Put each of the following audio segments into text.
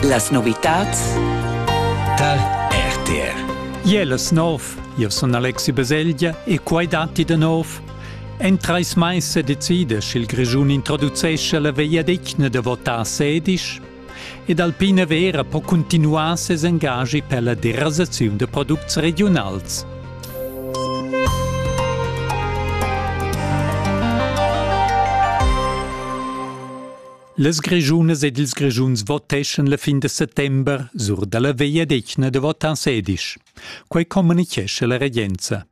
Las novitads tar RTR. Iel es nov, io sun Alexi Baselgia e quai datti da nov. En trais mais se decide, sch'il Grischun introducesce la vegliadetgna da votar sedisch ed Alpina Vera po cuntinuar ses engagi per la derasaziun da products regiunals. Las Grischunas ed ils Grischuns voteschan la fin da settember sur dalla vegliadetgna da votants sedisch. Quei communichescha la regenza.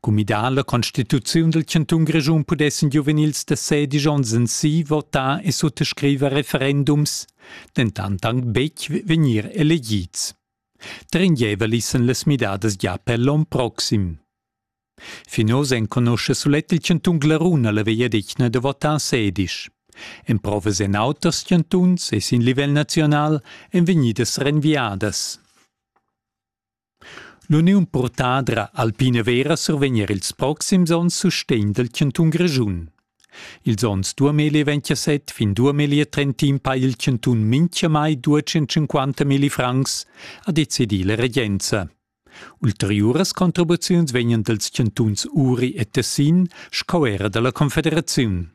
Cumidà la Constituziun del Cantun Grischun pudessen giuvenils da sedisch onns en si votar e suttascriver referendums, dentant anc betg vegnir elegids. Tringeva lissen las midadas gia per l'onn proxim. Fin oz enconuscha sulet il chantun Glaruna la vegliadetgna da votar sedisch. Emprovas en auters chantuns e sin livel naziunal èn vegnidas renviadas. L'uniun purtadra Alpina Vera survegn er ils proxims onns sustegn dal chantun Grischun. Ils onns 2027 fin 2030 ha il chantun mintgamai 250 milli francs, ha decidì la regenza. Ulteriuras contribuziuns vegnan dals chantuns Uri e Tessin sco era dalla confederaziun.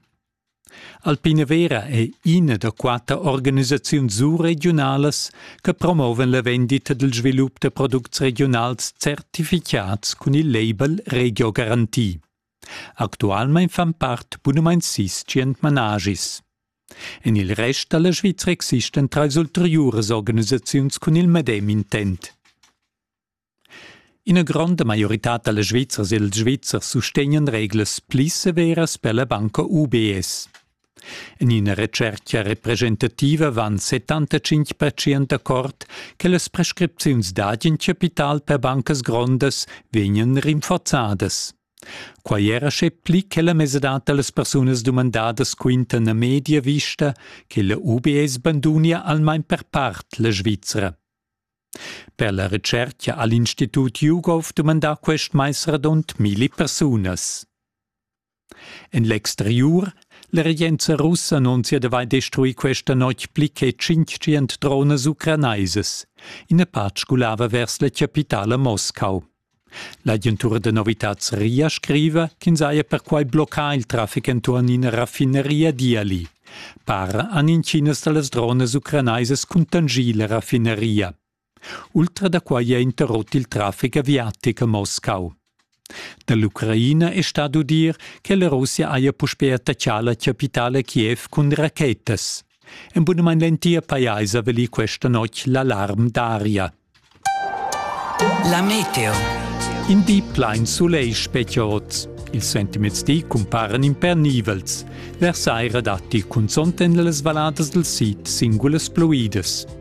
Alpina Vera è ina da quatter organisaziuns surregiunalas che promovan la vendita dal svilup da products regionals certificats cun il label Regio Garanti. Actualmein fan part bunamain sis tschient managis. En il rest da la Svizra existan trais ulteriuras organisaziuns cun il medem intent. Ina gronda maioritad da la Svizzers e dals Svizzers sustegnan reglas pli severas per la banca UBS. En ina retschertga representativa van 75 pertschient d'accord che las prescripziuns dad in chapital per bancas grondas vegnan rinforzadas. Quai era sche pli che la mesadad da las persunas dumandadas quintan a media vista che la UBS bandunia almain per part la Svizra. Per la retschertga ha l'Institut Jugov dumandà quest mais radund milli persunas. En l'exteriur La regenza russa annunzia d'avair destruì questa notg pli che tschintgient dronas ucranaisas. Ina part sgulava vers la chapitala Moscau. L'agentura da novitads RIA scriva ch'ins haja perquai bloccà il traffic enturn ina raffineria d'Iali. Para han intginas da las dronas ucranaisas cuntanschì la raffineria. Ultra da quai è interrot il traffic aviatic a Moscau. Da l'Ucraina è stà d'udir che la Russia haja puspè attaccà la chapitala Kiev cun rachetas. En bunamain l'entir pajais ha valì questa notg l'alarm d'aria. La meteo. In di plain sulegl spetga oz. Ils sentiments di cumparan impernivels. Versaira datti cunzont en las valladas dal sid singulas pluidas.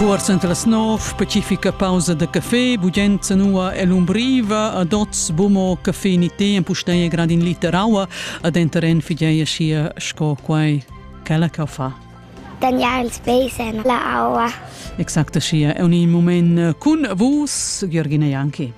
Cuors enta las nov specifica pausa da café, bugenza nua e l'umbriva, ad oz bumo café ni tè, empustei grad in liter aua, ad enteren fidei sia sco quai quella che fa. Daniel ils besen, la aua. Exacta sia, è un moment cun vus, Georgina Janki.